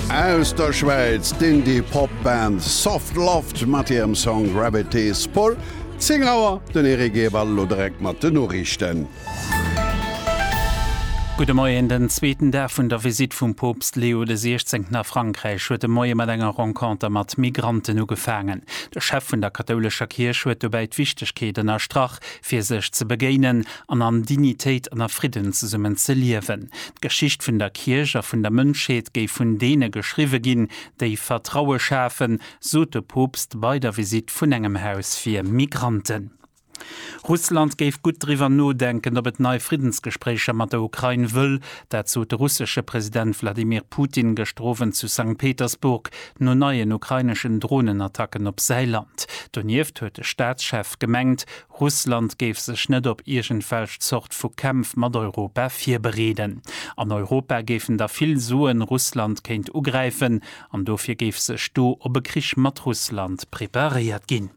Aus der Schwäiz d'Indie-Pop-Band Soft Loft mat hirem Song Gravity Spol. 10 Auer, den Eric Eberl elo direkt mat den Noriichten. Gudde Moien, Den zweeten Dag vun der Visitt vum Poopst Leo de Siechzéngten a Frankräich huet de Moie mat enger Renconter mat Migranten ugefaangen. De Chef vun der kathoulescher Kierch huet dobäi d'Wichtegkeet ënnerstrach, fir sech ze begéinen an an Dignitéit an a Fridden zesummen ze liewen. D'Geschicht vun der Kierch a vun der Mënschheet géif vun deene geschriwwe ginn, déi Vertraue schafen, sot de Poopst bei der Visitt vun engem Haus fir Migranten. Russland géif gutt driwwer nodenken, ob et nei Friddensgespréicher mat der Ukrain wëll. Dat sot de russesche President Wladimir Putin gëschter Owend zu Sankt Petersburg no neien ukraineschen Dronenattacken op säi Land. Donieft huet de Staatschef gemengt, Russland géif sech net op iergendwelch Zort vu Kämpf mat Europa virbereeden. An Europa géifen da vill soen, Russland kéint ugräifen an dofir géif sech do op e Krich mat Russland preparéiert ginn.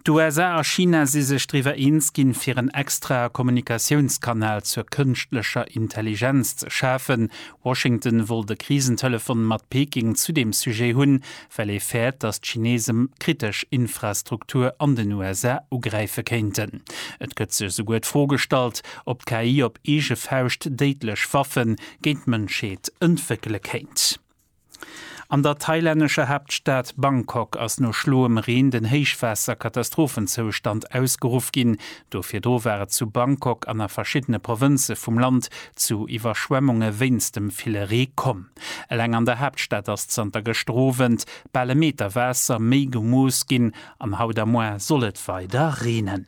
D'USA a China si sech driwwer eens ginn, fir en extrae Kommunikatiounskanal zur kënschtlecher Intelligenz ze schafen. Washington wollt e Krisentelefon mat Peking zu deem Sujet hunn, well ee fäert, datt d'Chineese kritesch Infrastruktur an den USA ugräife kéinten. Et gëtt sech esouguer d'Fro gestallt, ob d'KI op eege Fauscht déidlech Waffe géint d'Mënschheet entwéckele kéint. An der thailännescher Haaptstad Bangkok ass no schloem Reen den Héichwaasserkatastrophenzoustand ausgeruff ginn. Do virdru war et zu Bangkok an a verschiddene Provënze vum Land zu Iwwerschwemmunge wéinst dem ville Ree komm. Eleng an der Haaptstad ass zanter gëschter Owend bal e Meter Waasser méi gemooss ginn an haut am Moin soll et weider reenen.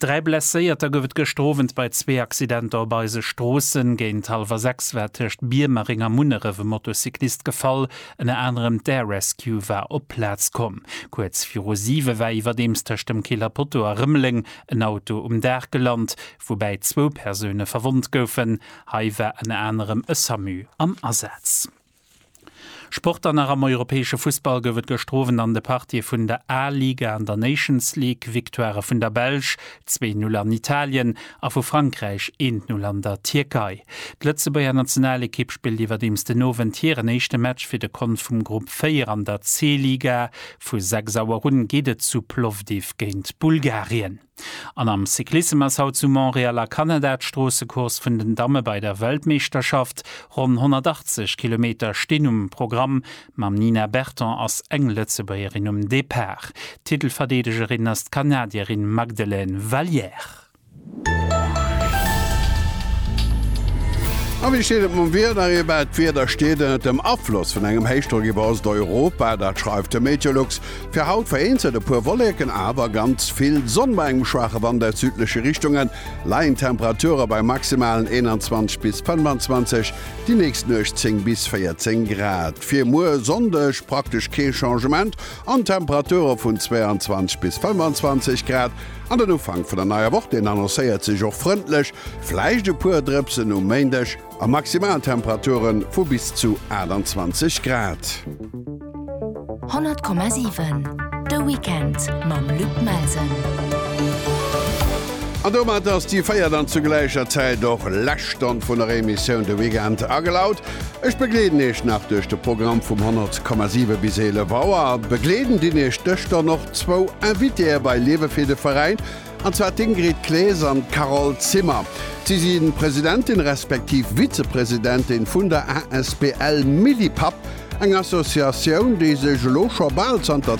Dräi Blesséierter gouf et gëschter Owend bei zwee Accidenter op eise Stroossen. Géint hallwer sechs war tëscht Biermering a Munneref e Motocyclist gefall. Ënner anerem d'Air Rescue war op d'Plaz komm. Kuerz viru siwe war iwwerdeems tëscht dem Kieler Poteau a Rëmeleng en Auto um Daach gelant, woubäi zwou Persoune verwonnt goufen. Hei war ënner anerem e Samu am Asaz. Sport dann nach, Am europäesche Fussball gouf et gëschter Owend an de Partië vun der A-Liga an der Nations League Victoirë vun der Belsch, zwee Null an Italien, a vu Frankräich, eent Null an der Tierkei. D'Lëtzebuerger Nationalekipp spillt iwwerdeems den Owend hiren éischte Match fir de Kont vum Grupp 4 an der C-Liga. Vu 6 Auer un geet et zu Plowdiw géint Bulgarien. An am Cyclissem ass haut zu Montréal a Kanada d'Stroossecourse vun den Damme bei der Weltmeeschterschaft. Ronn 180 Kilometer stinn um Programm. Mam Nina Berton ass eng Lëtzebuergerin um Depart. Titelverdeedegerin ass d'Kanadierin Magdelaine Valliere. A wéi steet et mam Wieder? Ebäi d'Wieder steet ënnert dem Afloss vun engem Héichdrockgebitt aus Europa, dat schreift de Meteolux. Fir haut vereenzelt e puer Wolleken, awer ganz vill Sonn bei engem schwaache Wand aus südleche Richtunge leien d'Temperature bei maximalen 21 bis 25, déi nächst Nuecht 10 bis 14 Grad. Fir muer Sonndeg praktesch kee Changement an Temperature vun 22 bis 25 Grad. An den Ufank vun der neier Woch, deen annoncéiert sech och frëndlech, vläicht e puer Drëpsen um Méindeg. a Maximaltemperature vu bis zu 28 Grad. 100,7 De Weekend mam Luc Melsen. An domat ass déi véiert an zugläicher Zäit och lescht Stonn vun der Emissioun De Weekend agelaut. Ech begleeden Iech nach duerch de Programm vum 100,7 bis 11 Auer. Begleeden dinn Iech dës Stonn och zwou Invitéë bei Liewe fir de Veräin. An zwar d'Ingrid Claes an d'Carole Zimmer. Si si Presidentin respektiv Vizepresidentin vun der asbl Millipapp, eng Associatioun, déi sech elo scho bal zanter